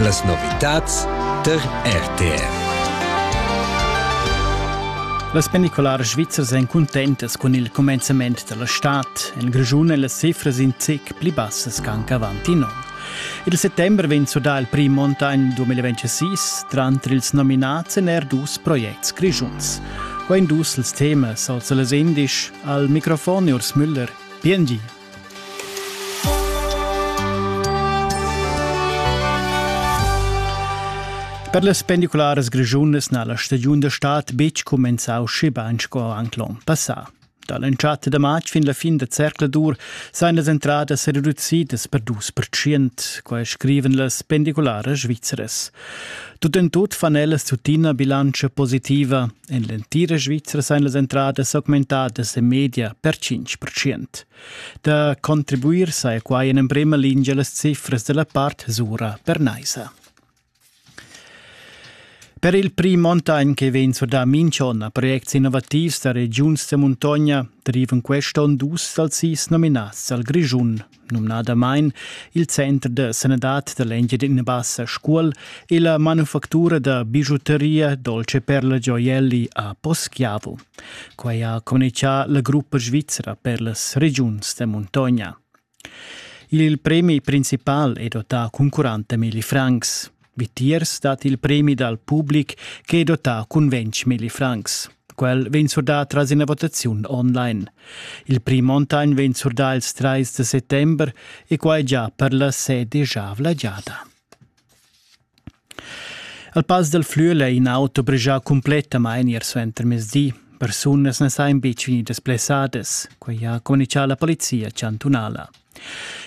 Las novitads tar RTV. Las pendicularas svizzers èn cuntentas cun il cumenzament da la stad. En Grischun èn las cifras in zic pli bassas ch'anc avant in onn. Il settembre vegn sudà il prim montagn 2026, tranter ils nominads èn er dus projects grischuns. Qua in dus ils temas, auza las indisch, al microfon Urs Müller, PNG. Per las pendicularas grischunas n'ha la stagiun da stad betg cumenzau schebain sco anc l'onn passà. Da l'entschatta da matg fin la fin da zercladur sajan las entradas reducidas per dus percent, quai scrivan las pendicularas svizzeras. Tut en tut fan ellas tuttina bilantscha positiva. En l'entira Svizra sain las entradas augmentadas en media per 5%. Da contribuir saja quai en emprima lingia las cifras da la part Sura per Naisa. Per il prim onn che vegn surdà minch'onn a projects innovativs da regiuns da muntogna derivan quest onn dus dals sis nominats al Grischun numnadamain il Center de Sanadad da l'Engiadina Bassa Scuol e la manufactura da bigiuteria Dolce per la Gioielli a Poschiavo. Quai ha communichà la gruppa svizra per las regiuns da muntogna. Il premi principal è dotà concurrente Milli Francs. Vitiers dat il premi dal public che è dotà cun ventg millifrancs. Quel vegn surdà tras ina votaziun online. Il prim Montagn vegn surdà ils trais da settember e quai già per la sedischavla giada. Al Pass dal Flüel è in auto bregià cumplettamain ier suentermezdi. Persunas na sajan betg vegnidas blessadas. Quai ha communicà la polizia chantunala.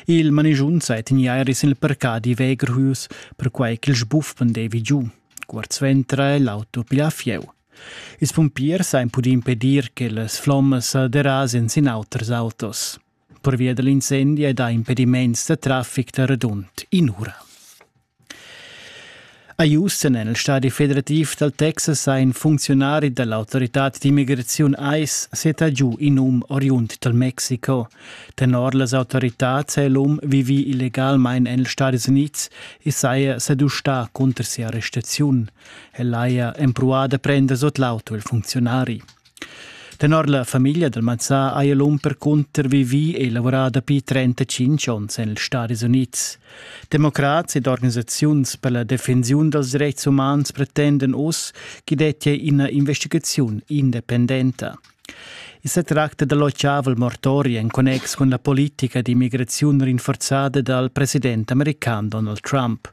Il manigiun sa tegnia er sin il parcadi Wegerhus, perquai ch'il sbuf pendevi giu. Cuort suenter è l'auto pli a fieu. Ils pumpiers han pudì impedir che las flommas derasen sin auters autos. Pervia dall'incendi è dà impediments da traffic da radund in'ura. A Houston en il stadi federativ dal Texas ha in funcziunari da l'autoritad d'immigraziun ICE setta giu in um oriund dal Mexico. Tenor las autoritads è l'um vivì illegalmain en ils Stadis Unids e saja sa dustà cunter sia arrestaziun. El haja empruà da prender sut l'auto il funcziunari. Tenor la famiglia dal Mazzà haja l'um percunter vivì e lavorà dapi 35 onns en ils Stadis Unids. Democrats ed organisaziuns per la defensiun dals dretgs umans pretendan uss ch'i dettia ina investigaziun independenta. I sa tracta da l'ochavel mortori en connex cun la politica d'immigraziun rinforzada dal president american Donald Trump.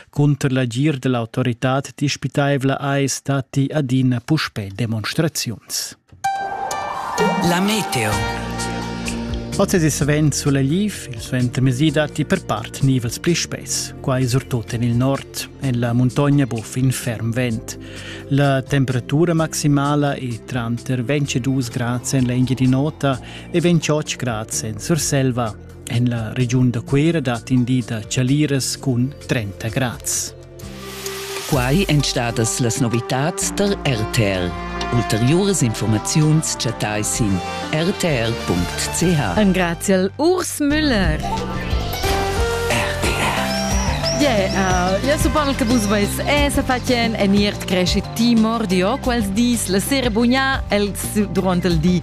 Cunter l'agir dell'autoritad dispitaivla eis datti adina puspè demonstraziuns. La meteo. Oz svent sulegliv, il svent mesi datti per part nivels pli spess, quai surtut en il nord, en la muntogna buff in ferm vent. La temperatura maximala è tranter 22 grad en l'Engiadin'Ota e 28 grad en Surselva. En la regiun da Cuera dat in di da chaliras cun 30 grads. Quai èn stadas las novitads tar RTL. Ulteriuras informaziuns chattai sin rtr.ch. Engraziel Urs Müller. Yeah, ja supal che vus veis e se fatien en iert cresce timor di o quels dis la sera bugna el durant el di